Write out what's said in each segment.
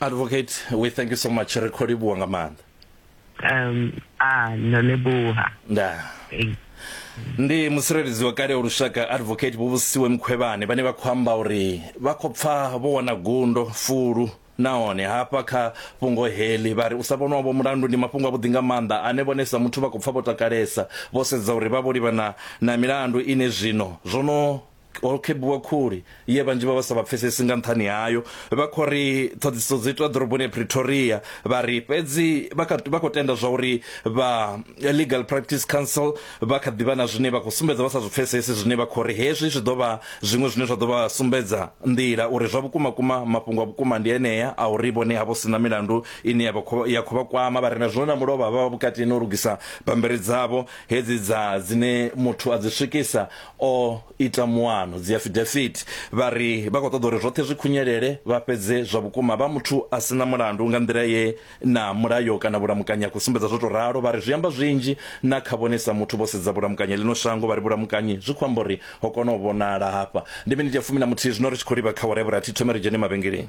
advocate we thank you so much ri kho livhuwa nga maanḓa um ah no leboha nda ndi musireledzi wa kale wa lushaka advocate vhuvhusiwe mkhwevhane vhane vha khou amba uri vha khou pfa vho wana gundo fulu nahone hafha kha fhungo heḽi vha ri u sa vhonwa vho mulandu ndi mafhungo avhuḓi nga maanḓa ane vhone sa muthu vha khou pfa vho takalesa vho sedza uri vha vho livhana na milandu ine zwino zwo no ho khebuwa khuli ye vhanzhi vha vha sa vha pfesesi nga nṱhani hayo vha khou ri ṱhoḓisiso dzi itwa ḓoroboni ya pretoria vha ri fhedzi vha khou tenda zwa uri vha legal practice council vha kha ḓivha na zwine vha khou sumbedza vha sa zwi pfesesi zwine vha khou ri hezwi zwi ḓo vha zwiṅwe zwine zwa ḓo vha sumbedza nḓila uri zwa vhukuma kuma mafhungo a vhukuma ndi enea a uri vhone havho sina milandu ine ya khou vha kwama vha ri na zwino na mulovha vha vha vhukati no lugisa bambiri dzavho hedzi dza dzine muthu a dzi swikisa o ita muano dzi affidavit vha ri vha khou ṱoḓa uri zwoṱhe zwi khunyelele vha fhedze zwa vhukuma vha muthu a si na mulandu nga nḓila ye na mulayo kana vhulamukanyi a khou sumbedza zwo tou ralo vha ri zwi amba zwinzhi na kha vhone sa muthu vho sedza vhulamukanyi ḽino shango vha ri vhulamukanyi zwi khou amba uri ho kona u vhonala hafha ndi miniti ya fumi na muthihi zwino ri tshi khou livha kha wharever a thi thome ri dzhene mavhengeleni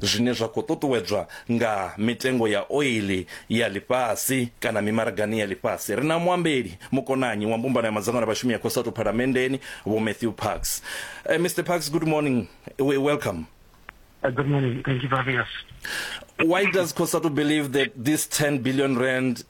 zwine zwa khou ṱuṱuwedzwa nga mitengo ya oiḽi ya ḽifhasi kana mimaragani ya ḽifhasi. Ri na muambeli mukonanyi wa mbumbano ya madzangano a vhashumi ya Cosatu Phalamenndeni, Vho Matthew Parks. Uh, eh, Mr Parks, good morning. We welcome. Uh, good morning. Thank you for having us. Why does COSATU believe that this 10 billion rand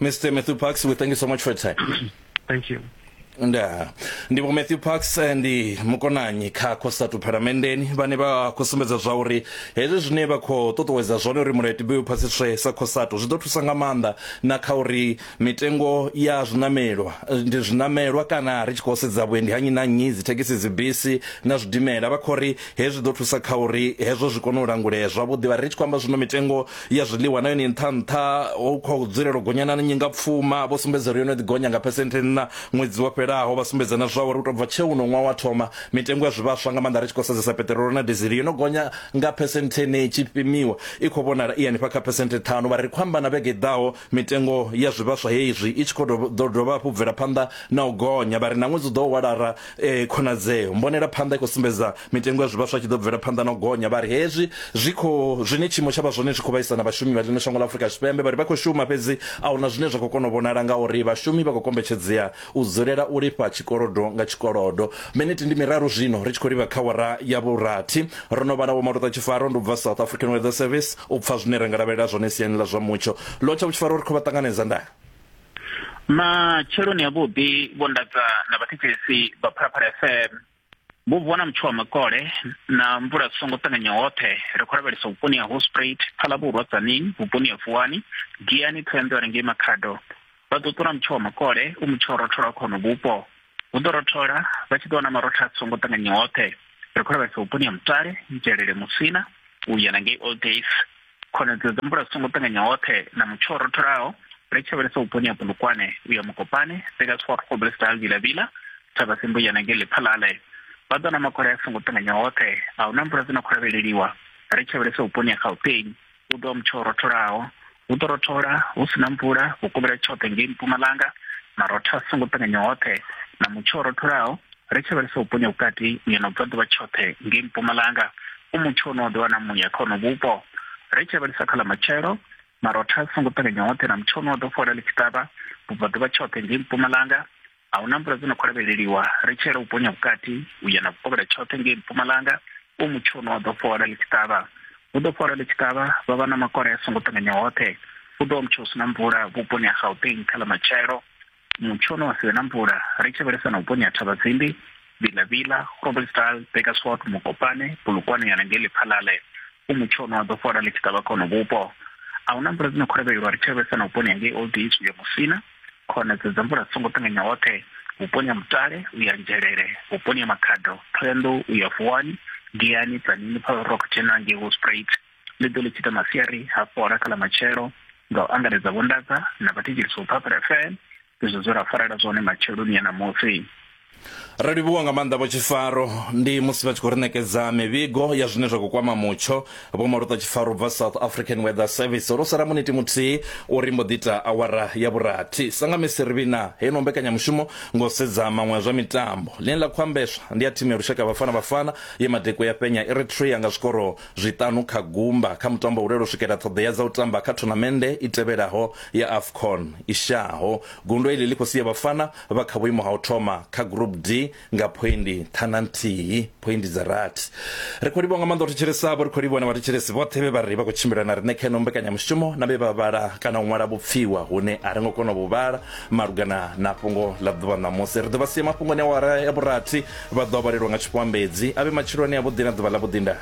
Mr. Matthew Parks, we thank you so much for your time. thank you. nda ndi vho matthew parks eh, ndi mukonanyi kha costatu phalamenndeni vhane vha khou sumbedza zwa uri hezwi zwine vha khou ṱuṱuwedza zwone uri mulayo tibe u phasiswe sa costatu zwi ḓo thusa nga maanḓa na kha uri mitengo ya zwinamelwa eh, ndi zwinamelwa kana ri tshi khou sedza vhuendi ha nnyi na nnyi dzithekhisi dzibisi na zwidimela vha khou ri hezwi ḓo thusa kha uri hezwo zwi kone u langulea zwavhuḓi vha ri tshi khou amba zwino mitengo ya zwiḽiwa na yone nṱha nṱha hu khou dzulela u gonya na nyingapfuma vho sumbedza uri yo no ḓi gonya nga phesenthe nṋa ṅwedzi wo fhelaho vha sumbedza na zwa uri u tou bva tsheo uno ṅwaha wa thoma mitengo ya zwivhaswa nga maanḓa ri tshi khou sedzesa peṱirolo na dizili yo no gonya nga phesenthe ne tshi pimiwa i khou vhonala i hanefha kha phesenthe ṱhanu vha ri khou amba na vhege i ḓaho Mitengo ya zwivhaswa hezwi i tshi khou ḓo dovha hafhu bvela phanḓa na u gonya, vha ri na ṅwedzi u ḓo walara khonadzeo. Mbonela phanḓa i khou sumbedza mitengo ya zwivhaswa tshi ḓo bvela phanḓa na u gonya, vha ri hezwi zwi kho zwine tshiimo tsha vha zwone zwi khou vhaisa na vhashumi vha ḽino shango ḽa Afrika Tshipembe. Vha ri vha khou shuma fhedzi a huna zwine zwa khou kona u vhonala ngauri vhashumi vha khou kombetshedzea U dzulela u lifha tshikolodo nga tshikolodo. Miniti ndi miraru zwino ri tshi khou livha kha awara ya vhurathi. Ro no vha na Vho Maluta Tshifaro, ndi u bva South African Weather Service, u pfa zwine ra nga lavhelela zwone siani ḽa zwa mutsho. Lotshau Tshifaro, ri khou vha ṱanganedza nda. Matsheloni avhuḓi, Vho Ndaza na vhathetshelesi vha Phalaphala FM. Vhubvo na mutsho wa makole na mvula zwi songo ṱanganya hoṱhe ri khou lavhelesa vhuponi ha Hospruit, Phalabuvhurwa, Tzaneen, vhuponi ha Vuwani, Giyani, Thohoyanḓou re ngei Makhado. Vha ḓo ṱula mutsho wa makole u mutsho o rothola kha hono vhupo. Hu ḓo rothola vha tshi ḓo wana marotha a songo ṱanganya hoṱhe. Ri khou lavhelesa vhuponi ha Mutale, Nzhelele, Musina, u ya na ngei Old Days, khonadzeo dza mvula zwi songo ṱanganya hoṱhe na mutsho rotholaho ri tshi vhalesa vhuponi ha pulukwane u ya mukopane seka swarhobelestal vilavila thaba semboyana nge lephalale vha ḓo na makole a songo ṱanganya hoṱhe a huna mvula dzi no khou lavheleliwa ri tshi vhalesa vhuponi ha gauteng u ḓo wa mutsho rotholaho hu ḓo rothola hu si na mvula vhukovhela tshoṱhe ngei mpumalanga marotho a songo ṱanganya hoṱhe na mutsho rotholaho ri tshi vhalisa vhuponi ha vhukati u ya na vhubvaḓuvha tshoṱhe ngei mpumalanga u mutsho une wa ḓo wana muya kha ono vhupo ri tshi vhalisa kha ḽa matshelo marotha a songo ṱanganya hoṱhe na mutsho une wa ḓo fola ḽi tshi ṱavha vhubvaḓuvha tshoṱhe ngei mpumalanga a hu na mvula dzo no khou lavheleliwa ri tshi yela vhuponi ha vhukati u ya na vhukovhela tshoṱhe ngei mpumalanga u mutsho une wa ḓo fola ḽi tshi ṱavha hu ḓo fola ḽi tshi ṱavha vha vha na makole a songo ṱanganya hoṱhe hu ḓo wa mutsho u si na mvula vhuponi ha gauteng kha ḽa matshelo Mutsho une wa si vhe na mvula, ri tshi vhalisa na vhuponi ha Thavhazimbi, Vilavila, Groblersdal, Bakersford, Mokopane, Polokwane ya na ngei Lephalale. U mutsho une wa ḓo fhola ḽi tshi ṱavha kha hono vhupo. A hu na mvula dzi no kholevhelwa ri tshi lavhelesa na vhuponi ha ngei Old East u ya Musina, khonadzeo dza mvula dzi songo ṱanganya hoṱhe, vhuponi ha Mutale u ya Nzhelele, vhuponi ha Makhado, Thohoyandou u ya Vuwani, Giyani, Tzaneen, Paarl Rock, Tshena ngei Hospruit. ḽi ḓo ḽi tshita masiari ha fhola kha ḽa matshelo nga u angaredza vhondadza na vhathetshelisi vho phaphela fm izwo zwe ra farela zwone matsheloni ya ṋamusi Ri livhuwa nga maanḓa vho Tshifaro ndi musi vha tshi khou ri ṋekedza mivhigo ya zwine zwa khou kwama mutsho. Vho Maluṱa Tshifaro bva South African Weather Service ro sala muniti muthihi uri mbo ḓi ita awara ya vhurathi. Sa nga misi ri vhina heyi no mbekanyamushumo ngo sedza maṅwe a zwa mitambo. Ḽine ḽa khou ambeswa ndi ya thimu ya lushaka ya Bafana Bafana ye Madekwe ya fhenya Eritrea nga zwikoro zwiṱanu kha gumba kha mutambo u lele u swikela ṱhoḓea dza u tamba kha thonamennde i tevhelaho ya Afcon i shaho. Gundo iḽi ḽi khou sia Bafana vha kha vhuimo ha u thoma kha Group D nga phoindi ṱhana nthihi, phoindi dza rathi. Ri khou livhuwa nga maanḓa u thetshelesavho, ri khou livhuwa na vhathetshelesi vhoṱhe vhe vha ri vha khou tshimbila na riṋe kha ino mbekanyamushumo na vhe vha vhala kana u ṅwala vhupfiwa hune a ri ngo kona u vhu vhala malugana na fhungo ḽa ḓuvha ṋamusi. Ri ḓo vha sia mafhungoni a awara ya vhurathi. Vha ḓo a vhalelwa nga tshifhoambedzi, a vhe matshilo ane avhuḓi na ḓuvha ḽavhuḓi ndaa.